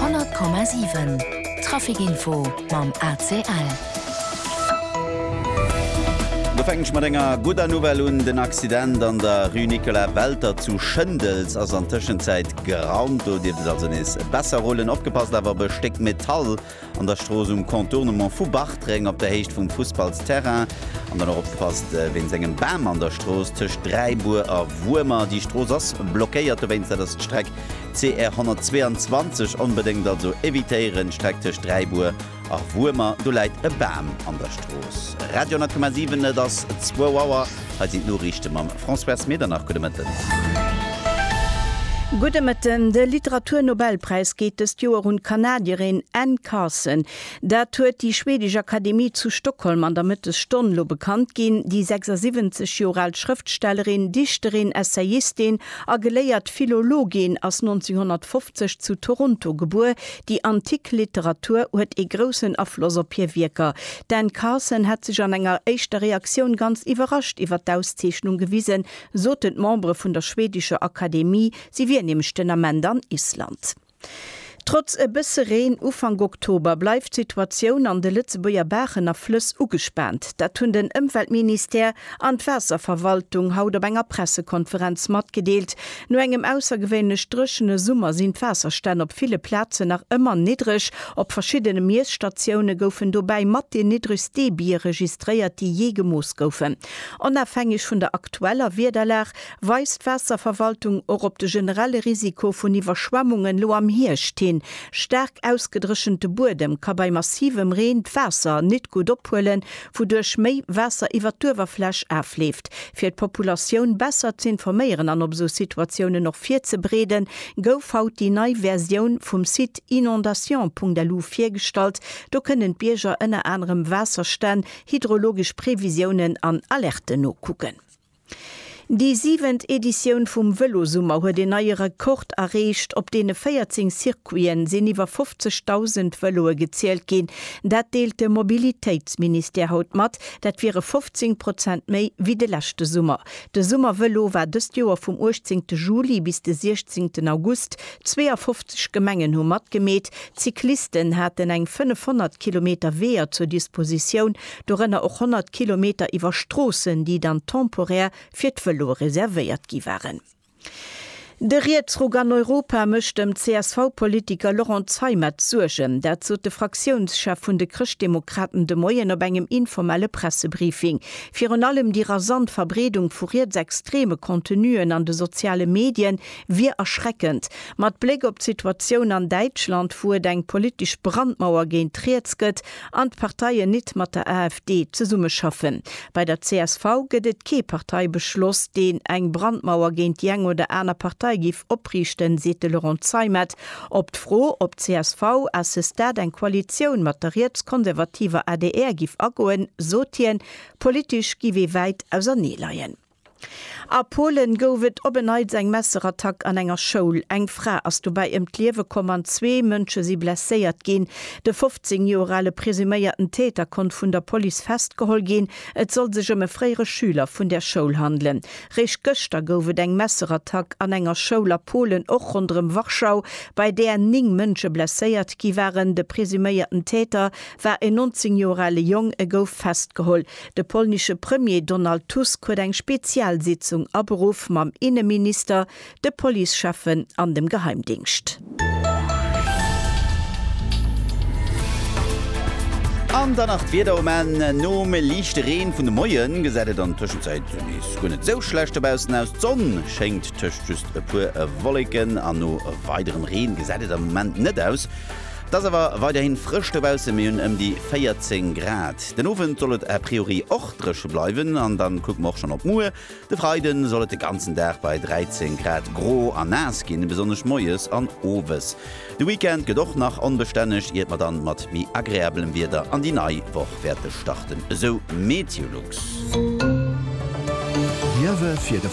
100,7 Trafic Info mam ACL. Do fänken ech mat enger gudder Nouvelle un, Den Accident an der Rue Nicolas Welter zu Schëndels ass an Tëschenzäit gerannt. Do dierft et also nees besser rullen. Opgepasst awer op e Stéck Metall An der Strooss um Contournement vu Bartreng op der Héicht vum Fussballsterrain. An dann och opgepasst wéinst engem Bam an der Strooss tëscht Dräibuer a Wuermer. Déi Strooss ass blockéiert, dowéinst dat ass d'Streck CR 122. Onbedéngt also evitéieren, d'Streck tëscht Dräibuer a Wuermer, do läit e Bam an der Strooss. Radio 10,7, et ass zwou Auer. Hei sinn d'Noriichte mam Françoise Medernach. Gudde Mëtten. Gudde Mëtten. De Literaturnobelpräis geet dëst Joer un d'Kanadierin Anne Carson. Dat huet déi schweedesch Akademie zu Stockholm an der Mëttesstonn elo bekannt ginn. Déi 76 Joer al Schrëftstellerin, Dichterin, Essayistin a geléiert Philologin ass 1950 zu Toronto gebuer. Déi antik Literatur huet ee groussen Afloss op hir Wierker. D'Anne Carson hätt sech an enger éischter Reaktioun ganz iwwerrascht iwwer d'Auszeechnung gewisen, soten d'Membere vun der schweedescher Akademie, si wier nämlech den Ament an Island. Trotz e bësse Reen Ufank Oktober bleift d'Situatioun an de Lëtzebuerger Baachen a Flëss ugespaant. Dat hunn den Ëmweltministère, an d'Waasserverwaltung haut op enger Pressekonferenz matgedeelt. No engem aussergewéinlech dréchene Summer sinn d'Waasserstänn op ville Plazen nach ëmmer niddreg. Op verschiddene Miesstatioune goufen dobäi mat déi niddregst Debie registréiert, déi jee gemooss goufen. Onofhängeg vun der aktueller Wiederlag weist d'Waasserverwaltung och op de generelle Risiko vun Iwwerschwemmungen elo am Hierscht hin. Staark ausgedréchente Buedem ka bei massivem Reen d'Waasser nit gutt ophuelen, wouduerch méi Waasser iwwert d'Uewerfläch afleeft. Fir d'Populatioun besser z'informéieren an op esou Situatiounen och virzebreeden, gouf haut déi nei Versioun vum Site inondations.lu virgestallt. Do kënnen d'Bierger ënner anerem Waasserstänn, hydrologesch Previsiounen an Alerten nokucken. Déi siwent Editioun vum Vëlosummer huet een neie Rekord erreecht. Op deene 14 Circuiten sinn iwwer 50.000 Vëloe gezielt ginn. Dat deelt de Mobilitéitsministère haut mat. Dat wiere 15 Prozent méi wéi de leschte Summer. De Summervëlo war dëst Joer vum 18 Juli bis de 16 August. 52 Gemengen hu matgemeet. D'Cyclisten haten eng 500 Kilometer Weeër zur Dispositioun. dorënner och 100 Kilometer iwwer Stroossen, déi dann temporär fir d'Vëloe reservéiert gi waren. De Rietsruck an Europa mécht dem CSV-Politiker Laurent Zeimet Suergen. Dat sot de Fraktiounschef vun de Chrëschtdemokraten de Moien op engem informelle Pressebriefing. Virun allem déi rasant Verbreedung vu rietsextreme Contenuen an de soziale Medie wier erschreckend. Mat Bléck op d'Situatioun an Däitschland, wou et eng politesch Brandmauer géint riets gëtt, An d'Parteien nit mat der AfD zesummeschaffen. Bei der csv gëtt et kee Parteibeschloss, deen eng Brandmauer géint déi eng oder aner Partei giff opriichten, seet de Laurent Zeimet. Op d'Fro, ob csv à ce stade eng Koalitioun mat der rietskonservativer adr giff agoen, sot hien, Politesch giff ee wäit auserneeleien. A Polen gouf et op en Neits eng Messerattack an enger Schoul. Eng Fra ass dobäi ëm d'Liewe komm an zwee Mënsche si blesséiert ginn. De 15 Joer ale presuméierten Täter konnt vun der Police festgeholl ginn. Et soll sech ëm e fréiere Schüler vun där Schoul handelen. Réischt gëschter gouf et eng Messerattack an enger Schoul a Polen, och ronderëm Warschau, bei där 9 Mënsche blesséiert gi waren. De presuméierten Täter war en 19 Joer ale Jong, e gouf festgeholl. De polnische Premier Donald Tusk huet eng Spezialsitzung aberuff mam Inneminister, de Policecheffen an dem Geheimdingscht. An dann nach d'Wieder um Enn, Nom liichte Reen vun de Moien gesäit et an der Tëschenzäit nees guer net esou schlecht dobaussen aus. D'Sonn schéngt, tëscht just e puer Wolleken an no weiderem Reen gesäit et am Moment net aus. Et ass awer weiderhin frësch dobaussen, mir hunn ëm déi 14 Grad. Den Owend soll et a priori och dréche bleiwen an dann kucke mer och schonn op muer, de Freide soll et de ganzen Dag bei 13 Grad gro a naass ginn, besonnesch moies an owes. De Weekend gëtt och nach onbestänneg, iert mer dann mat méi agreablem Wieder an déi nei Woch wäerte starten, esou Meteolux. D'Ierwe fir de.